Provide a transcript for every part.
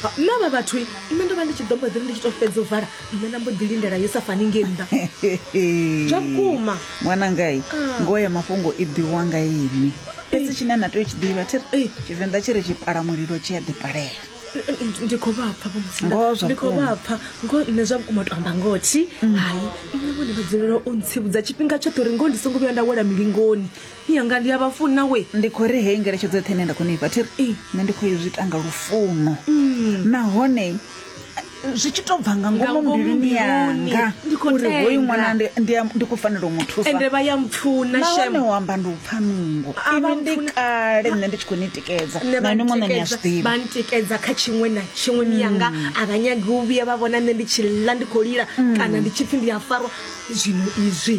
Ha, nṋe vha vhathu nṋe ndo vha ndi tshi ḓo mbo ḓiri ndi tshi to fhedza u vala nṋe na mbo ḓi lindela yo sa fani nge nnḓa zwa vhukuma ṅwanangai Ah. ngoho ya mafhungo i ḓiwa nga ini fhedzi tshine na tea u tshi ḓivha thi ri tshivenḓa tshi ri tshipala mulilo tshi a ḓipalela Ndi- ndi khou vha pfa vhomusinda Ngoho zwa ndi khou vhukuma. vha pfa ngo nṋe zwa vhukuma to amba ngothi hayi nṋe vhone vha dzulela u ntsivhudza tshifhinga tshoṱhe uri ngoho ndi songo vhuya nda wela milingoni Yanga ndi a vha funa we. Ndi khou ri heyi ngeletshedzo yoṱhe ine nda khou ni fha thi ri nṋe ndi khou i zwi ita nga lufuno nahone zwi tshi tou bva nga Nga ngomu ngomu mbiluni mbiluni, yanga ndi khou uri hoyu tenda. ṅwana ndi- ndi a- ndi khou fanela u mu thusa ende vha ya mpfuna nahone shem u amba ndi u pfa nungo A vha inwi ndi mpfuna. kale nṋe ndi tshi khou ni tikedza nṋe na inwi muṋe ni a zwi ḓivha vha ntikedza kha tshiṅwe na tshiṅwe miyanga a vha nyagi u vhuya vha vhona nṋe ndi tshi ḽa ndi khou lila kana ndi tshi pfhi ndi a farwa zwino izwi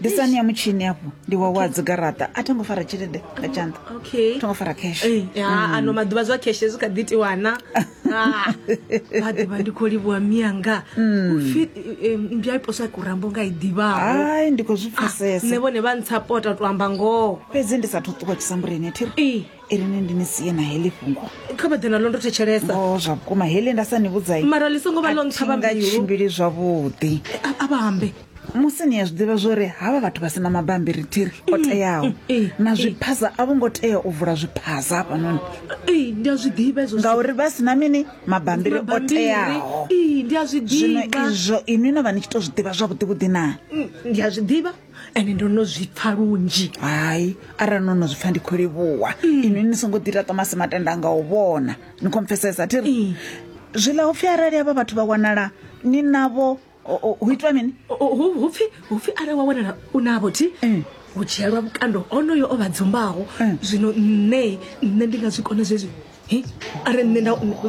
disani ya mutshini afho ndi wawe a dzigaraṱa a tho ngo fara tshelede nga tshanḓa okay tho ngo fara cash Eh, ya, Mm. ano maḓuvha zwa kheshe zwi kha ḓi tiwana Ah, vha ḓivha ndi khou livhuwa mianga Mm. upfi eh, mbya i poswa kurambo nga i ḓivhaho ai ndi khou zwi nṋe pfesesa vhone vha ntsha pota to amba ngoho fhedzi ndi sathu ṱuwa tshisambuleni thiri Eh, irini ndi ni sie na heḽi fhungo kha vha ḓe nalo ndo thetshelesa o zwa vhukuma heḽi nda sa ni vhudzai mara ḽi songo vha ḽo ntsha vha mbilu tshimbili zwavhuḓi A- a vha ambe musi ni a zwi ḓivha zwori havha vhathu vha sina mabambiri thiri o teaho na zwiphaza a vho ngo tea u vula zwiphaza hafhanoni ee ndi a zwi ḓivha ezwo ngauri vha sina mini mabambiri o teaho ee ndi a zwi zwino ḓivha izwo inwi no vha ni tshi to zwi ḓivha zwavhuḓi vhuḓi na Mm, ndi a zwi ḓivha ende ndo no zwi pfa lunzhi hayi arali no no zwi pfa ndi khou livhuwa inwi ni songo ḓi ita tomasi matenda nga u vhona ni khou mpfesesa thiri zwiḽa upfhi arali havha vhathu vha wanala ni navho hu itwa mini hupfi hupfi are wa wanala u navho thi eh. hu dzhielwa vhukando onoyo o vha dzumbaho eh. zwino nṋe nṋe ndi nga zwi kona zwezwi are nṋe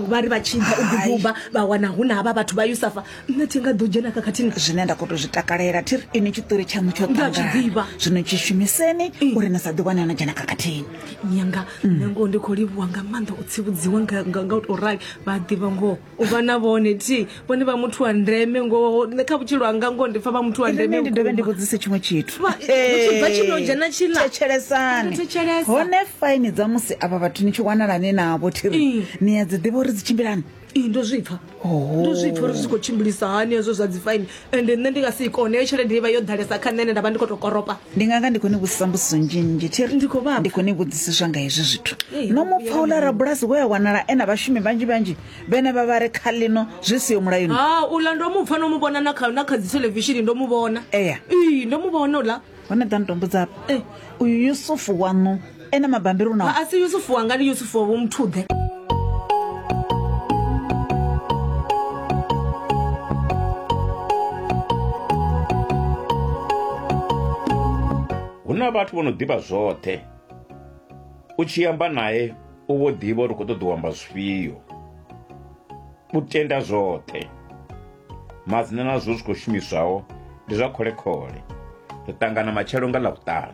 vha ri vha tshinza u ḓiduba vha wana hu na havha vhathu vha yusafa nṋe thi nga ḓo dzhena khakhathini zwine nda khou to zwi takalela thi ri ini tshiṱori tshaṋu tsho ṱangaḓivha zwino tshi shumiseni eh. uri na sa ḓiwane no dzhena khakhathini nyanga mm. nṋe ngoho ndi khou livhuwa nga maanḓa u tsivhudziwa nga u to rali vha ḓivha ngoho u vha na vhone thi vhone vha muthu wa ndeme ngoho nṋe kha vhutshilo hanga ngoho ndi pfa vha muthu wa ndeme ndi dovhe ndi vhudzise tshiṅwe tshithu tshibva tshino dzhena tshila thetshelesani hone faini dza musi avha vhathu ni tshi wanalani navho thiri ni ya dzi ḓivha uri dzi tshimbilani ndo zwipfa ndo zwipfa uri zwi khou tshimbilisa hani hezwo zwa dzi faini ende nṋe ndi nga si i kone heyo tshelede ivha yo ḓalesa kha nṋe ene nda vha ndi khou to koropa ndi nga nga ndi khou ni vhudzisa mbudziso nzhinzhi thiri Ndi khou vha- ndi khou ni vhudzisiswa nga hezwi zwithu Ee, no mu pfa uḽa rabulasi we a wanala e na vhashumi vhanzhi vhanzhi vhene vha vha re kha ḽino zwi siho mulayoni ha uḽa ndo mu pfa no mu vhona na kha na kha dzi thelevishini ndo mu vhona Eya. ii ndo mu vhona uḽa hone ḓa nitombudza apa e uyu yusufu waṋu ene mabambiri u nao a si yusufu wanga ndi yusufu wa vho muthuḓe hu na vhathu vho no ḓivha zwoṱhe u tshi amba naye u vho ḓivha uri u khou ṱoḓa u amba zwifhio u tenda zwoṱhe Madzina na zwo zwi khou shumiswaho ndi zwa khole-khole. Ri ṱangana matshelo nga Ḽavhuṱanu.